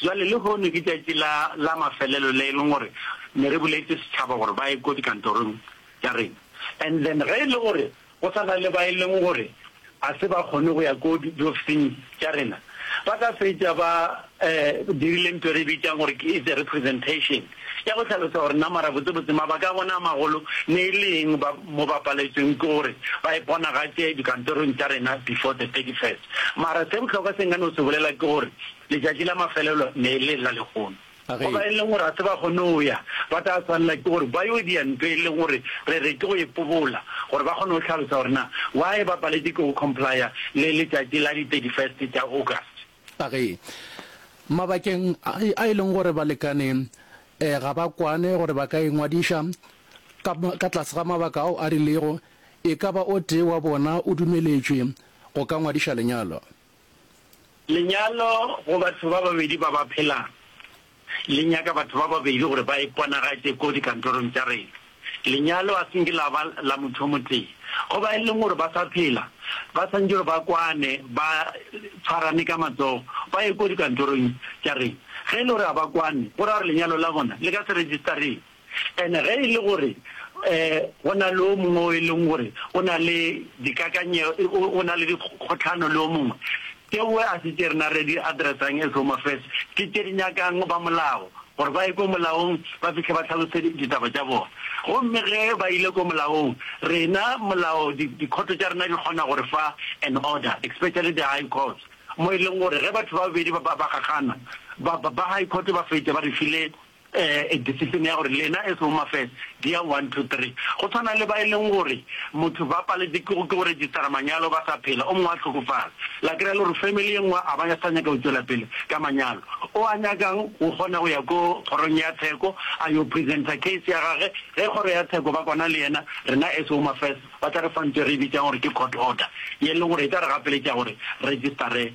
Bjale lehono ke tšatši la, la mafelelo le e leng gore ne re boletše setšhaba gore ba ye ko dikantorong tša rena. And then ge e le gore go sa na le ba e leng gore ga se ba kgone go ya ko di, diofising tša rena, ba ka fetša ba, eh, dirile ntho e re e bitšang gore ke, it's a representation. ya go hlalosa gore na marabotsebotse mabaka a bona a magolo ne e le eng ba mo ba paletšweng ke gore ba iponagatše dikantorong tša rena before the 31st. Mara se bohlokwa se nka no se bolela ke gore letšatši la mafelelo ne e le la lehono. Go ba e leng gore ga se ba kgone go ya, ba tla swanela ke gore ba yo dia ntho e leng gore re re ke go e pobola gore ba kgone go hlalosa gore na why ba paletše ke go comply-a le letšatši la di 31st tša August. A Ge mabakeng a e leng gore balekane eh, ga ba kwane gore ba ka ingwadiša ka, ka tlase ga mabaka ao a rilego, e ka ba o tee wa bona o dumeletšwe go ka ngwadiša lenyalo. Lenyalo go batho ba babedi ba ba phelang. Le nyaka batho ba babedi gore ba iponagatše ko dikantorong tša rena. Lenyalo a se nke la ba la motho o motee. Go ba e leng gore ba sa phela, ba swanetše gore ba kwane, ba tshwarane ka matsogo, ba ye ko dikantorong tša rena. Ge e le gore ga ba kwane, go ra gore lenyalo la bona le ka se registereng. And ge e le gore go na le o mongwe o e leng gore o na le dikakanyego, o na le dikgotlhano le o mongwe, tšeo a se tše rena re di addressang as Home Affairs, ke tše di nyakang ba molao, gore ba ye ko molaong ba fihle ba hlalose ditaba tša bona. Gomme ge ba ile ko molaong, rena molao, dikhoto tša rena di kgona go re fa an order, especially the High Courts, mo e leng gore ge batho ba babedi ba gagana, ba High Court ba fetša ba re file um decision ya gore lena as home affairs dia one two three go tshwana le ba e leng gore motho ba paletse ke go ke go registera manyalo ba sa phela o mongwe a tlhokofala la kry-a le gore family ye nngwe a ba sa nyaka go tšwela pele ka manyalo o a nyakang o kgona go ya ko kgorong ya tsheko a yo presenta case ya gage ge kgoro ya tsheko ba kwana le yena rena as home affairs ba tla re fantse re e bitsang gore ke court order ye e leng gore e tla re gapeletša gore registere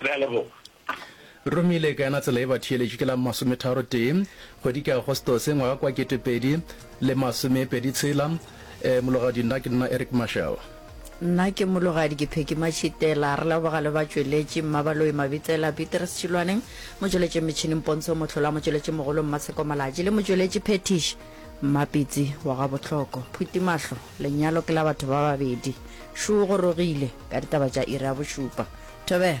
Re a leboga. Romile ka yona tsela e ba theeletše ke la masometharo tee kgwedi ke Agostose ngwaga kwa ketepedi le masome pedi tshela eh, mologadi nna ke nna Eric Marshall. Nna ke mologadi ke Pheky Matšhitela. Re leboga le batšweletši Mmabaloi Mabitsela, Petrus Tšhilwane, motšweletšing metšhining Pontsho Mohlola, motšweletši mogolo Mmatsheko Malatši le motšweletši phethiši Mmapitsi wa ga Bohloko Phutimahlo. Lenyalo ke la batho ba babedi. Šo o gorogile ka ditaba tša iri ya bošupa. Thobela.